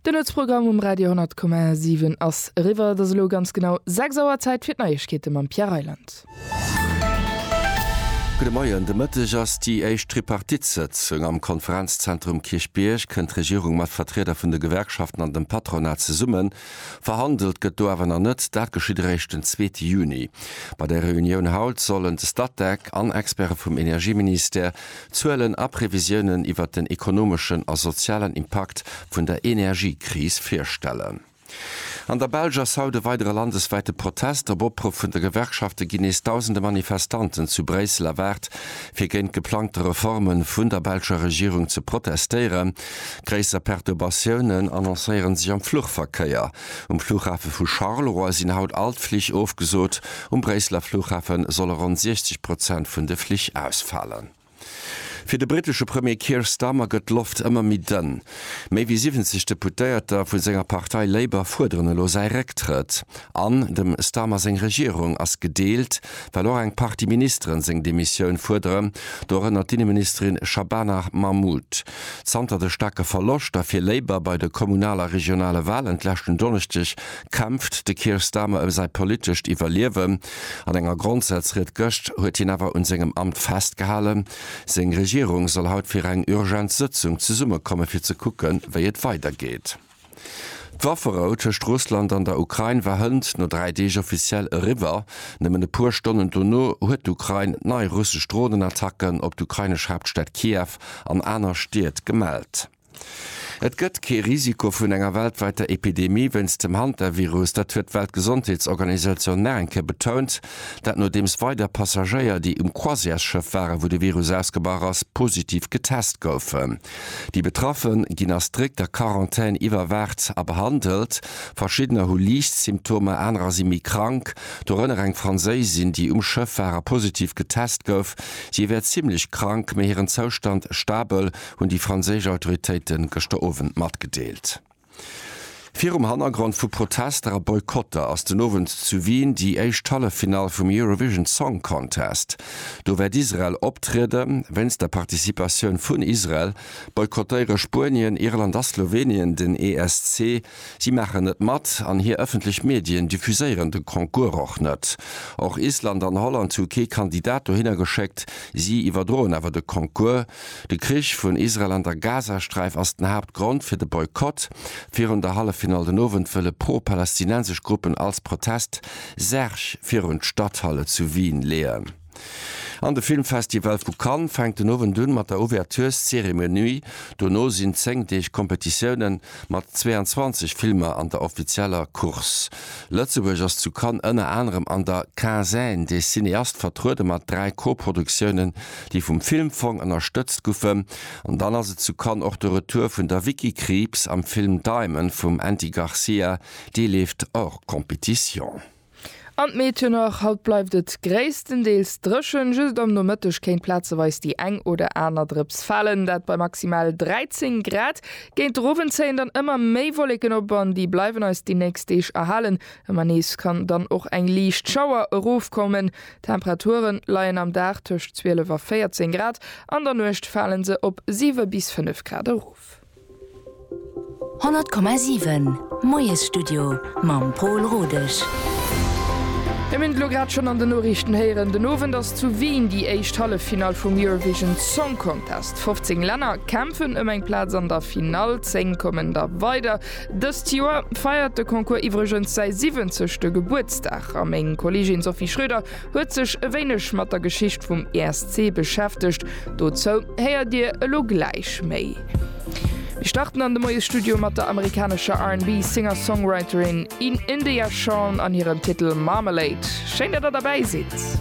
De Nuetsprogramm um Radio 10,7 ass eriwwer. Et ass elo ganz genau 6 Auer. Zäit fir d'Neiegkeete mam Pierre Reyland. Gudde Moien. De Mëtteg ass déi éischt Tripartite-Sëtzung am Konferenzzentrum Kierchbierg. Kënnt d'Regierung mat Vertrieder vun de Gewerkschaften an dem Patronat zesummen? Verhandelt gëtt do awer nach net. Dat geschitt eréischt den zweete Juni. Bei der Reunioun haut sollen de Statec an Experte vum Energieministère Zuelen a Previsiounen iwwer den ekonomeschen a sozialen Impakt vun der Energiekris virstellen. An der Belsch ass haut e weidere landeswäite Protest. Op Opruff vun de Gewerkschafte ginn nees dausende Manifestanten zu Bréissel erwaart, fir géint d'geplangte Reforme vun der belscher Regierung ze protestéieren. Gréisser Perturbatiounen annoncéiere sech am Fluchverkéier. Um Flughafe vu Charleroi sinn haut all d'Flich ofgesot. Um Bréisseler Flughafe solle ronn 60 Prozent vun de Flich ausfalen. Fir de brittesche Premier Keir Starmer gëtt d'Loft ëmmer méi dënn. Méi wéi 70 Deputéierter vu senger Partei Labour fuerderen elo säi Récktrëtt. An dem Starmer seng Regierung ass gedeelt, well och eng Partie Ministeren seng Demissioun fuerderen, dorënner d'Inneministerin Shabana Mahmood. Zanter de staarke Verloscht a fir Labour bei de kommunal a regionale Walen d'leschten Donneschdeg kämpft de Keir Starmer ëm säi politescht Iwwerliewen. An enger Grondsazried gëscht huet hien awer un sengem Amt festgehalen. Seng Regierung soll haut fir eng urgent Sëtzung zesummekomme fir ze kucken, wéi et weidergeet. D'Wafferou tëscht Russland an der Ukrain war hënt no dräi Deeg offiziell eriwwer. Nëmmen e puer Stonnen dono huet d'Ukrain nei russesch Dronenattacken op d'ukrainesch Haaptstad Kiew an aner Stied gemellt. Et gëtt kee Risiko vun enger weltwäiter Epidemie wéinst dem Hantavirus. Dat huet d'Weltgesondheetsorganisatioun nach eng Kéier betount. Dat nodeems weider Passagéier, déi um Croisièresschëff waren, wou de Virus ausgebrach ass, positiv getest goufen. Déi Betraffe ginn a strikter Quarantän iwwerwaacht a behandelt. Verschiddener hu liicht Symptomer, anerer si méi krank, dorënner eng Franséisin, déi um Schëff war a positiv getest gouf. Si wär zimmlech krank, mee hiren Zoustand stabel, hunn déi franséisch Autoritéite gëschter Owend matgedeelt. Virum Hannergrond vu Protester a Boykotter ass den Owend zu Wien déi éischt Halleffinall vum Eurovision Song Contest. Do wäert Israel optriede. Wéinst der Participatioun vun Israel boykottéiere Spuenien, Irland a Slowenien den ESC. Si maachen net mat an hir ëffentlech Medien diffuséieren de Concours och net. Och Island an Holland hu kee Kandidat dohinner geschéckt, si iwwerdroen awer de Concours. De Krich vun Israel an der Gazasträif ass den Haaptgrond fir de Boykott. Virun der Halleffinall den Owend wëlle pro-palästinensesch Gruppen als Protest Särg virun d'Stadhalle zu Wien leeën. An de Filmfestival vu Cannes fänkt den Owend un mat der Ouvertureszeremonie. Dono sinn 10 Deeg Kompetitioune mat 22 Filmer an der offizieller Course. Lëtzebuerg ass zu Cannes ënner anerem an der Quinzaine des cinéastes vertruede mat dräi Koproduktiounen, déi vum Filmfong ënnerstëtzt goufen. An dann ass et zu Cannes och de Retour vun der Vicky Krieps am Film Diamond vum Andy Garcia, dee leeft hors compétition. An d'Méteo nach, Haut bleift et gréisstendeels dréchen, just am Nomëtteg kéint plazeweis déi eng oder aner Drëps falen, dat bei maximal 13 Grad. Géint de Owend zéien dann ëmmer méi Wolleken op an déi bleiwen eis déi nächst Deeg erhalen. Ëmmer nees kann dann och eng liicht Schauer erofkommen. D'Temperature leien am Dag tëscht 12 a 14 Grad, an der Nuecht fale se op 7 bis 5 Grad erof. 100,7 Moiesstudio mam Pol Rodesch. Dir hunn et elo grad schonn an den Noriichten héieren, den Owend ass zu Wien déi éischt Halleffinall vum Eurovision Song Contest. 15 Länner kämpfen ëm eng Plaz an der Finall, 10 kommen da weider. Dëst Joer feiert de Concours iwwregens säi 70. Gebuertsdag a meng Kolleegin Sophie Schröder huet sech e wéineg mat der Geschicht vum ESC beschäftegt. Dozou héiert Dir elo gläich méi. Mir starten an de Moiesstudio mat der amerikanescher RnB Singer-Songwriterin India Shawn an hirem Titel Marmalade. Schéin, datt Der derbäi sidd!